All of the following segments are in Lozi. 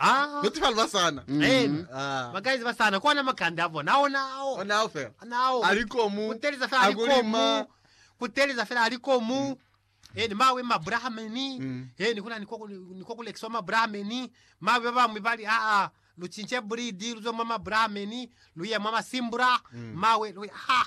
Ah, Kuti ba luba sana. Amen. Ah. ba guys ba sana kona makanda abo na ona ao Ona ao fela. ona ao Ali komu. kuteleza fela ali Akulima. komu kuteleza fela ali komu eni mawe mabrahameni Mm. eni kuna niko niko kulekiswa mabrahameni mawe ba bamwe bali a a lucince breed luzwe mwa mabrahameni luye mwa masimbura Mm. mawe luye ha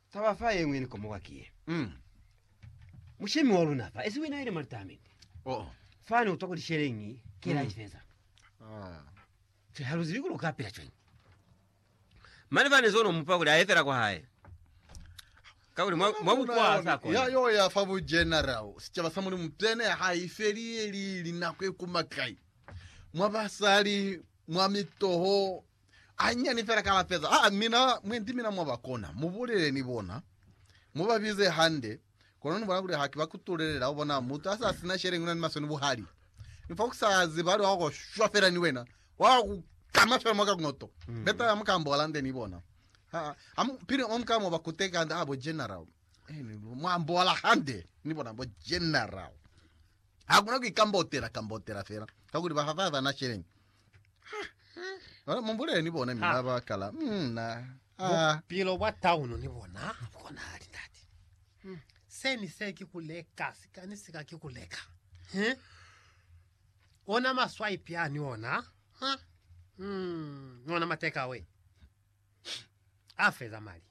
Taba fa yeñwi ni komoka ki ye, Mm. Mushemi wa luna fa, esi wina ile mwa litamende. Oh. Fani utwa ku lisheleñi, kela Mm. ifeza. Ah. Che haluzibi kuli uka pila cwañi. Mane fani zono mupa kuli aye fela kwa hae. Ka kuli mwa mwa bukwa sa Ya kona. yo ya fa bu general, sicaba sa Mulimu tene ha ifeli ye li linako e kuma kai. Mwa basali, mwa mitoho, Anyinyani fela ka lapeza. Aa, mina, mwendi mina mwa ba kona, mu bulele ni bona, mu ba bize hande, kono ni bona kuli ha ki ba kutulelela. U bona, mutu ha sa sina sheleñi, una ni maswe ni buhali. Ni fa ku sa zibali, wa ku shwa fela ni wena, wa ku kama fela mwa ka kunoto. Betala mu kamba Holande, ni bona. Aa, ha mu, pili mu ka mo ba kuteka hande, aa, bo General, eh, ni mwa ambola hande, ni bona, bo General. Hakuna ku ikambotela, kambotela fela, kakuli ba fa ba sa na sheleñi. Bona, mumbulele ni bona mina ba kala mm, na ah, Bupilo bwa tauno ni bona habukonahali ndati. Se ni se ki kuleka, sika ni sika ki kuleka. He? Ona maswipe ya ni ona. Ha? Mm, ni ona matekawe. A feza mali.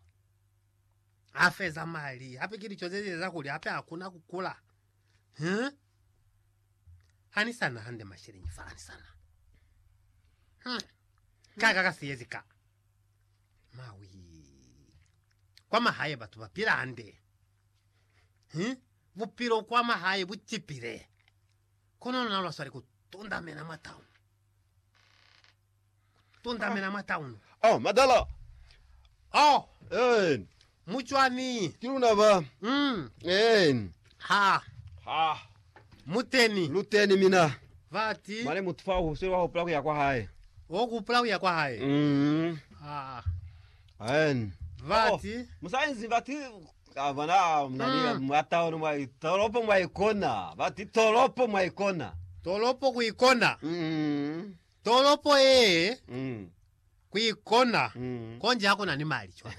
A feza mali. Hape ki licho ze za kuli hape hakuna kukula. He? Ha ni sa na hande masheleñi fa ni sa na. Hmm. Ka ka ka siyezi ka. Mawi. Kwa mahaye batu ba pila hande. Hmm? Bupilo kwa mahaye bu cipile. Kono lona lwa swali ku tundamena mwa town. tundamela mwa taunu. Oh, madala! Oh, Amen. mu cwani? Ki luna ba. Mm. Amen. Ha. Ha. Mu teni. Lu teni, mina. Vati. Mane mutu fa uhusweli wa hupula kuya kwa hae. Wo kupula kuya kwa hae. Mm. Ha. Amen. Vati. Oh, musainzi vati kavana mnani mm. mwa taunu mwa tolopo mwa ikona. Vati tolopo mwa ikona. Tolopo ku ikona. Mm. Tolopo yee kuikona konji hakuna ni mali cwa.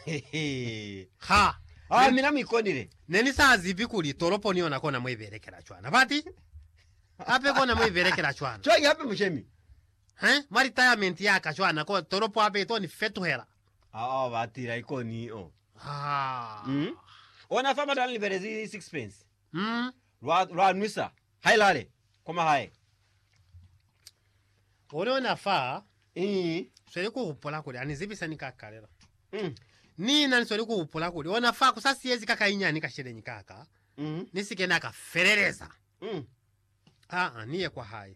Ha. Ha, mina muikonile. Nenisazibi kuli tolopo ni yona kona muibelekela cwana. Bati? Hape kona muibelekela cwana. Cwañi hape mushemi? He, mwa retirement yaka cwana, ko tolopo hape itoni fetuhela. Haa, batila ikoni, oh. Haa. Ona fa mata nilibelezi sixpence. Mm, lwa, lwa nwisa. Hai lale, kwa mahae. One ona fa, Ii. sweli ku hupula kuli ani zibisa ni ka kalela. Mm. Ni na ni sweli ku hupula kuli ona fa ku sa siyezi ka kainyani ka sheleñi ka ka, Mm. ni si ke na ka feleleza. Mm. Aa, ni ye kwa hae.